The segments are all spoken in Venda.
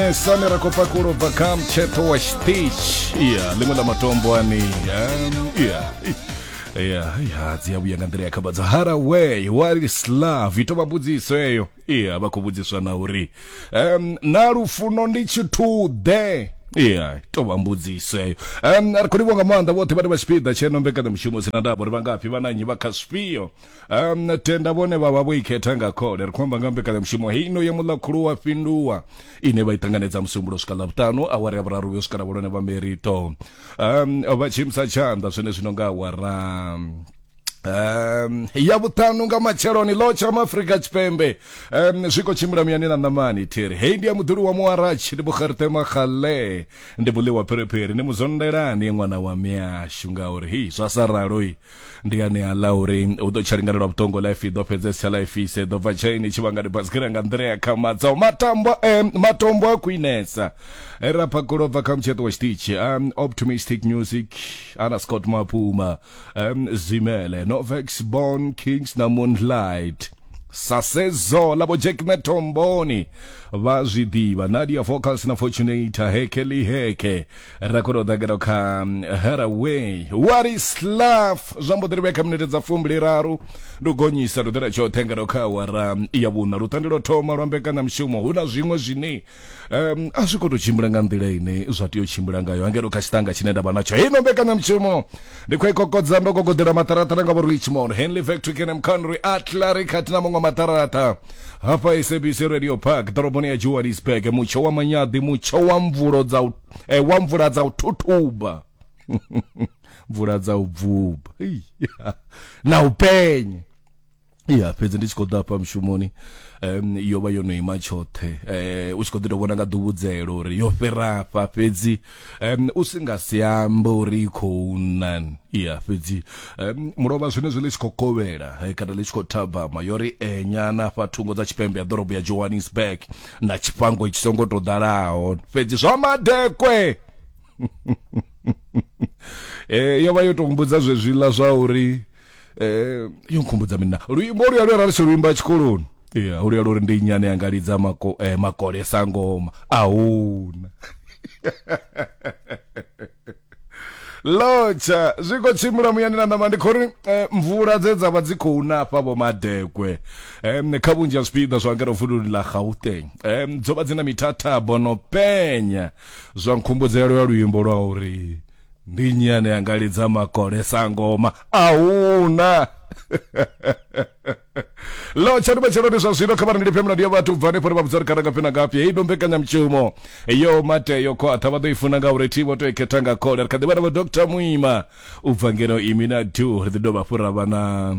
Eh, Sami Rakopakuro Bakam Cheto wa Stich yeah, limwe la matombo ani um, yeah. Yeah, yeah, dzi ya vhuya nga nḓila ya khabadzo haraway wali slav ito vha mbudziso eyo iya vha khou vhudziswa na uri um, na lufuno ndi tshithuḓe iya ito vha mbudziso eyo um, ri khou livhonga maanḓa vhoṱhe vhane vha tshipiḓa tsheno mbekanyamushumo sina ndavha uri vha ngafhi vha na nnyi vha kha zwifhio um, tenda vhone vha vha vho ikhetha nga khole ri khou amba nga mbekanyamushumo heino ya muḽa khulu wa fhinduwa ine vha i ṱanganedza musumbulo swika ḽa vhuṱanu awara ya vhuraru vhuyo swika na vhulone vha merito um, vha tshimisa tshanḓa zwine zwino nga awara Um, ya vhuṱanu nga matsheloni ḽo tsha maafrika tshipembe um, zwi khou tshimbila muyani na ṋamani thiri hei ndi ya muḓuli wa muwaratshi ndi bukgerte makgale ndi buliwa phiriphiri ndi muzondelani ṅwana wa miashu ngauri hi zwa sa raloi ndi ane a ḽa uri u ḓo tsha lingana lwa vhuṱongo life i ḓo fhedzesa life ise ḓo bva tshaini tshi vhanga dibasgira nga nḓila ya khamadza matambo eh, matombo a khwinesa eh, ra phakulo bva kha mutsheṱo wa tshiṱitshi um, optimistic music ana scott mapuma um, zimele novex bon kings na moonlight sasezo la bo jack metomboni vha zwi ḓivha nadia vocals na fortunator heke li heke ra kona u ḓagela kha mm, haraway what is love zwa mbo ḓi ri vhe kha minete dza fumbiliraru ndi u gonyisa ri ḓela tshoṱhe ngeno kha awara mm, ya vhuṋa lutande lwo thoma lwa mbekanyamushumo hu na zwiṅwe zwine um, a zwi khou tou tshimbila nga nḓila ine zwa tea u tshimbila ngayo angeno kha tshiṱanga tshine nda vha natsho heino mbekanyamushumo ndi khou i kokodza ndo gogodela maṱaraṱa na nga vho richmond henley factory kenam conry atlari khathihi na maṅwe maṱaraṱa hafha sabc radio park ḓoroboni ya johannesburg mutsho wa manyaḓi mutsho wa mvulo dza u eh, wa mvula dza u thuthuba mvula dza u bvuba na u penye ya fhedzi ndi tshi khou ḓa hafha mushumoni um yo vha yo no ima tshoṱhe eh u tshi khou ḓi tou vhona nga ḓuvhudzelo uri yo fhira afha fhedzi um u si nga si ambe uri i khou nan ya fhedzi um mulovha zwenezwo ḽi tshi khou kovhela eh, kana ḽi tshi khou thabama yo ri enyana afha thungo dza tshipembe ya ḓorobo ya johannesburg na tshifhango tshi songo tou ḓalaho fhedzi zwa madekwe eh yo vha yo tou mbudza zwezwiḽa zwa uri eh yo nkhumbudza mina luimbo luya luya rali luimba tshikoloni ya luya luri ndi nyane yanga lidza mako eh, makole sangoma ahuna lotsha zwi khou tshimbila muyani na ṋama ndi khou ri eh, mvula dze dza vha dzi khou nafha vho madekwe um, kha vhunzhi ha zwipiḓa zwa ngeno vululu ḽa gauteng um, dzo vha dzi na mithathabo no penya zwa nkhumbudzelo ya luimbo lwa uri ndi nnyi ane anga lidza makole sangoma ahuna lo tshani matsheloni zwa zwino kha vharangeli phemela ndi ya vhathu bva hanefho ri vha vhudza ri kana ngafhi na ngafhi heyi ndo mbekanyamushumo yo mate yo khwaṱha vha ḓo i funa ngauri thi vho to i khetha nga khole ri kha ḓi vha na vho dr muima u bva ngeno imi na du ri ḓi dovha fhura vhana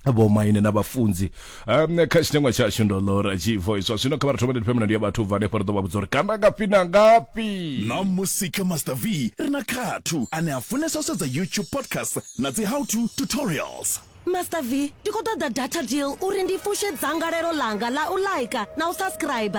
vhomaine na vhafunzi um, kha tshitengwa tshashu ndo lora tshivo iswa zwino kha vha ri thomele thipemela ndi ya vhathu bva hanefho ri ḓo vha vhudza uri kana ngafhi na ngafhi na musi kha master v ri na khathu ane a funesa u sedza youtube podcast na dzi how to tutorials master v ndi khou ṱoḓa data deal uri ndi fushe dzangalelo ḽanga ḽa u laika na u subscribe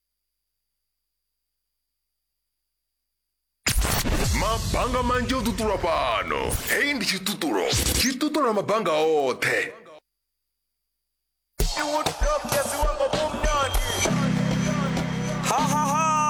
mabanga manzhi o ṱuṱulwa fhano hei ndi tshiṱuṱulo tshi ṱuṱula mabanga oṱhe